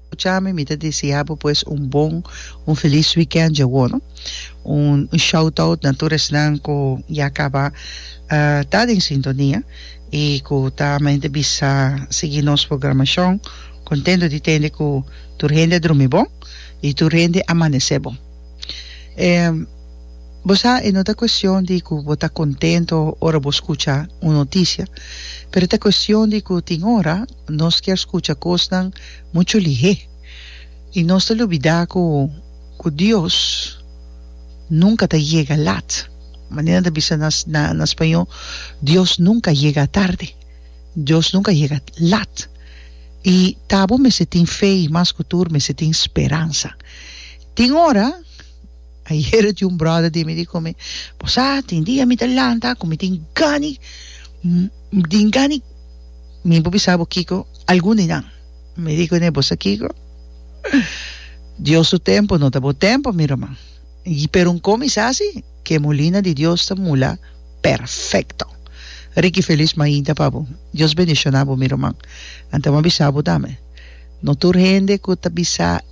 Escucha mi, mi ta desea bo pues un bon, un feliz weekend djawo no. Un shout out na tur esnan cu ya caba ta den sintonia y cu ta mente bisa sigui nos programacion. Contento di tende cu tur hende a drumi bon y tur hende a amanece bon. Bo sa e no ta cuestion di cu bo ta contento ora bo scucha un noticia pero ta cuestion di cu tin ora Nos kier skucha kosnan muchu lihé i nos ta lubidá ku Dios nunka ta yega lat. Manera nan ta bisa na spañó, Dios nunka yega tarde, Dios nunka yega lat. I ta bo mester tin fe i mas ku tur mester tin speransa. Tin ora. Ayer tin un brother di mi di con mi, bo sa, tin dia mi ta lanta cu mi tin gani, mi tin gani, mi por bisa bo kico, algun di nan. Mi di cune, bo sa kico? Dios su tempo no ta bo tempo, mi ruman. Y pero un cominsa asi, cu e molina di Dios ta mula perfecto. Ricky Feliz mainta pa bo. Dios bendiciona bo, mi ruman. Anto bo a bisa bo tambe, no tur hende cu ta bisa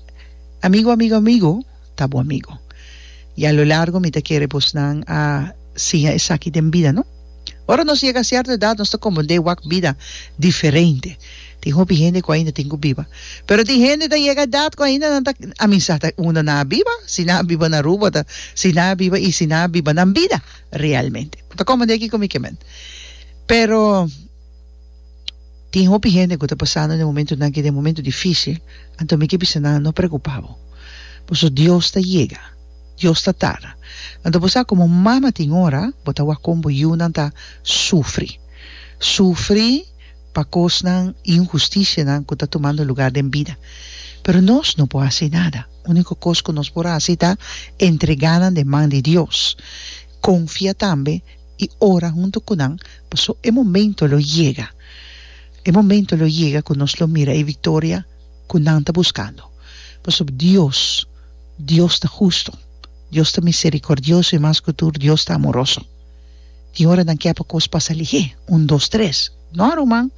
amigo, amigo, amigo, ta bo amigo. I a lo largo mi ta kere bosnan a siña esaki den bida, no? Ora nos yega sierto edat nos ta komprendé wak bida diferente. Tin hopi hende ku ainda tin ku biba, pero tin hende ta yega edat ku ainda nan ta a misa ta unda nan a biba, si nan a biba na Aruba ta si nan a biba i si nan a biba nan bida realmente. Bo ta komprendé kiko mi ke men. Pero. Tin hopi hende cu ta pasando den momentonan aki den momento dificil, anto mi ke bisa nan, no preocupa bo. Boso Dios ta yega. Dios ta tarda. Anto bo sa como mama tin ora bo ta wak con bo yiunan ta sufri. Sufri pa cosnan y injusticianan cu ta tumando lugar den bida. Pero nos no por haci nada. Unico cos cu nos por haci ta entreganan den man di Dios. Confia tambe. i ora huntu ku nan, paso e momento lo yega. E momento lo yega ku nos lo mira e viktoria ku nan ta buskando. Pasobra Dios, Dios ta hustu, Dios ta miserikordioso i mas ku tur Dios ta amoroso. Tin ora nan ke pa kos pasa lihé, un dos tres. No, ruman.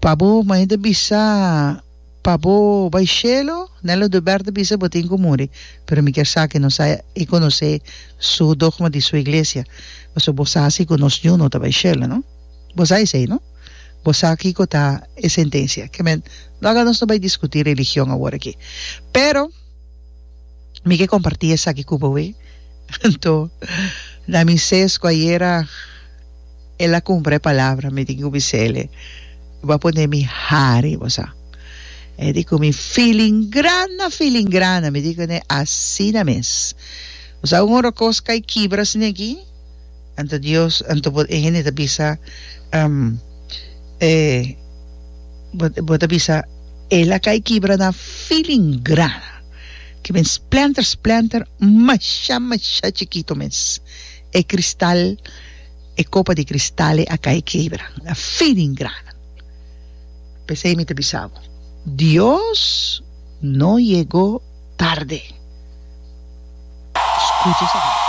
Pa bo, mei ta bisa. Pa bo bai shelo? Nelo do Bert a bisa, Bo tin ku muri, pero mi kier sa ku nos a e konosé su dogma di su iglesia, pasobra bo sa si ku nos Yu no ta bai shelo, no? Bo sa esei, no? Bo sa kiko ta e sentensia. Kèmen, no aga nos no bai diskutí religion awor aki. Pero, mi ke kompartí esaki ku bo, wi. Anto, na mi sesku ayera. El a cumpra e palabra mi tin cu bisele bo a pone mi hari bo sa e di cu mi filingrana filingrana mi di cune asina mes bo sa un ora cos cay kibra sne aki anto Dios anto bo e hende ta bisa um e bo bo ta bisa el a cay kibra na filingrana kimen splanter splanter masha masha chikito mes E kristal, e kopa di kristal e a kai kebra, a fin den grana. P'esei mi ta bisa bo, Dios no yegó tarde. Skucha esaki.